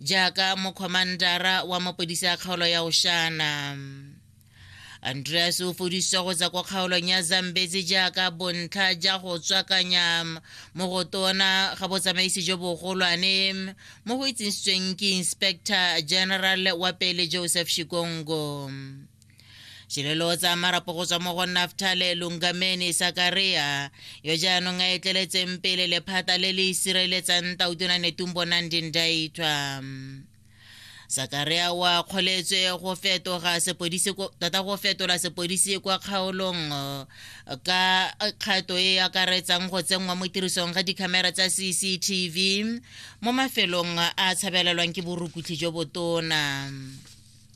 jaaka mokgomandara wa mapodisi a kgaolo ya oshana andreas o fodisitswe go tswa kwa kgaolong ya zambezi jaaka bontlha ja go tswakanya mo go tona ga botsamaisi jo bogolwane mo go itsisitsweng ke inspector general wa pele joseph shikongo Shilelo tsa marapo go tswa mo go Naftale Lungameni Sakaria yo jaanong a etleletseng pele lephata le le sireletsang Tautona Netumbo Nandi Ndaitwa. Sakaria wa kgoletswe go fetoga sepodisi tota go fetola sepodisi kwa kgaolong ka kgato e e akaretsang go tsenngwa mo tirisong ga dikhamera tsa CCTV mo mafelong a tshabelelwang ke borukutlhi jo botona.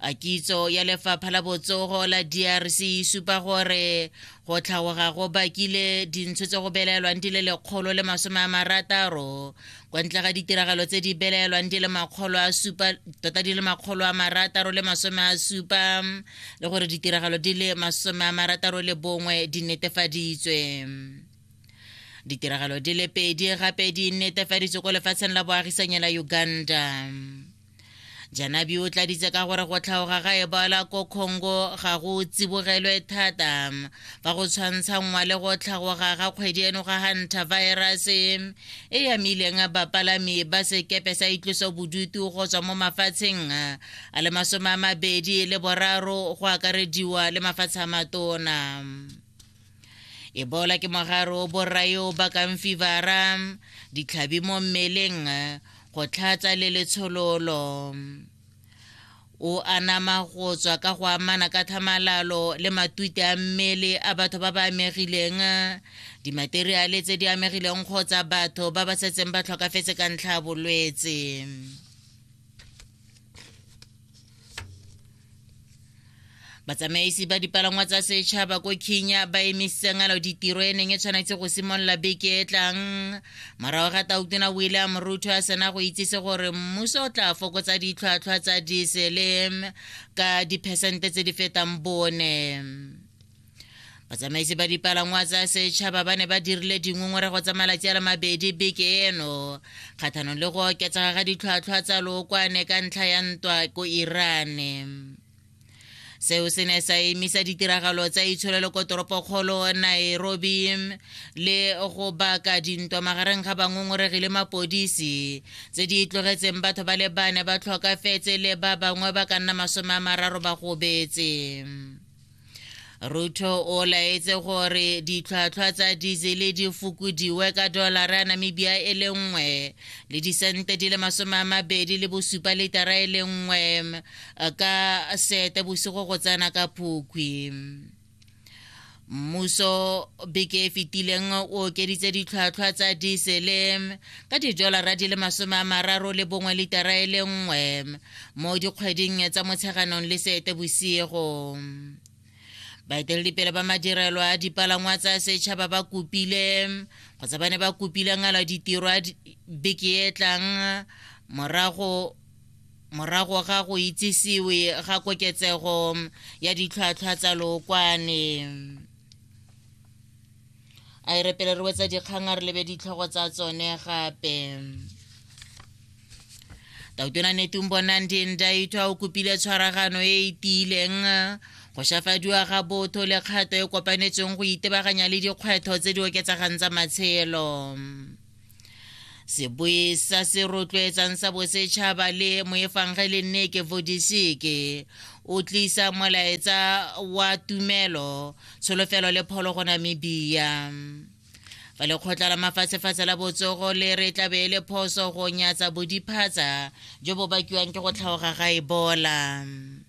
a kitso ya lefapha la botsogo la drc e supa gore go tlhagoga go bakile dintsho tse go belaelwang di le lekgolo le masome a marataro kwa ntle ga ditiragalo tse di belaelwang di le makgolo a supa tota di le makgolo a marataro le masome a supa le gore ditiragalo di le masome a marataro le bongwe di netefaditswe ditiragalo di le pedi gape di netefaditswe ko lefatsheng la boagisanyela uganda janabi o tladitse ka gore go tlhaoga ga ebola ko congo ga go tsibogelwe thata fa go tshwantshanngwa le go tlhagoga ga kgwedi eno ga hunter virus e yamileng bapalami ba sekepe sa itloso bodutu go tswa mo mafatsheng a le masome a mabedi le boraro go akarediwa le mafatshe a matona ebola ke mogare o borai o bakang fivara ditlhabi mo mmeleng go tlhatsa le letshololo o anama go tswa ka go amana ka tlhamalalo le matute a mmele a batho ba ba amegileng dimateriale tse di amegileng kgotsa batho ba ba setseng ba tlhokafetse ka ntlha ya bolwetse batsamaisi ba dipalangwa tsa setšhaba ko kenya ba emisitseng alo ditiro e neng e tshwanetse go simolola beke e tlang morago ga tautona william ruto a sena go itsise gore mmuso o tla fokotsa ditlhwatlhwa tsa diesele ka diphesente tse di fetang bone batsamaisi ba dipalangwa tsa setšhaba ba ne ba dirile dingongorego tsa malatsi a le mabedi beke eno kgathanong le go oketsega ga ditlhwatlhwa tsa lookwane ka ntlha ya ntwa ko irane seo se ne sa emisa ditiragalo tsa itsholelo ko toropokgolo nairobi le go baka dintwa magareng ga bangongoregi le mapodisi tse di tlogetseng batho ba le bane ba tlhokafetse le ba bangwe ba ka nna masome a mararo ba gobetse ruto o laetse gore ditlhwatlhwa tsa diesele di fokodiwe ka dolara ya namibia e le nngwe le disente di le masome a mabedi le bosupa litara e le nngwe ka sete bosigo go tsena ka phukwi mmuso beke e fetileng o okeditse ditlhwatlhwa tsa diesele ka didolara di le masome a mararo le bongwe litara e le nngwe mo dikgweding tsa motsheganong le seete bosigo baeteledipele ba madirelo a dipalangwa tsa setšhaba ba kopile kgotsa ba ne ba kopile ngala ditiro a beke e tlang morago morago ga go itsisiwe ga koketsego ya ditlhwatlhwa tsa lookwane a e repele re wetsa dikgang a re lebe ditlhogo tsa tsone gape tautona netumbo nandi ndaitwa o kopile tshwaragano e e tiileng go shafadiwa ga botho le kgato e kopanetsweng go itebaganya le dikgwetlho tse di oketsagang tsa matshelo sebui sa se rotloetsang sa bosetšhaba le moefangele nneke vodiseke o tlisa molaetsa wa tumelo tsholofelo le pholo go namibia fa lekgotla la mafatshefatshe la botsogo le re tlabe e le phoso go nyatsa bodiphatsa jo bo bakiwang ke go tlhaoga ga ebola e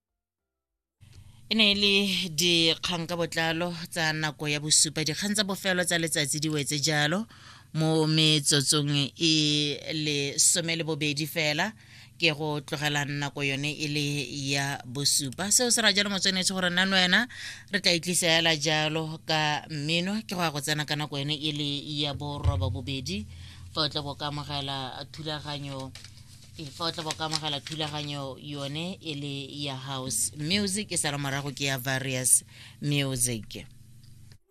e ne e le dikgang ka botlalo tsa nako ya bosupa dikgang tsa bofelo tsa letsatsi di wetse jalo mo metsotsong e le some le bobedi fela ke go tlogela nako yone e le ya bosupa seo se ra jalo motswenetse gore nna wena re tla itlisa ela jalo ka mmino ke go ya go tsena ka nako yone e le ya boroba bobedi fa o tla bo ka amogela thulaganyo e fa o tla ka amogela thulaganyo yone e le ya house music e sala morago ke ya various music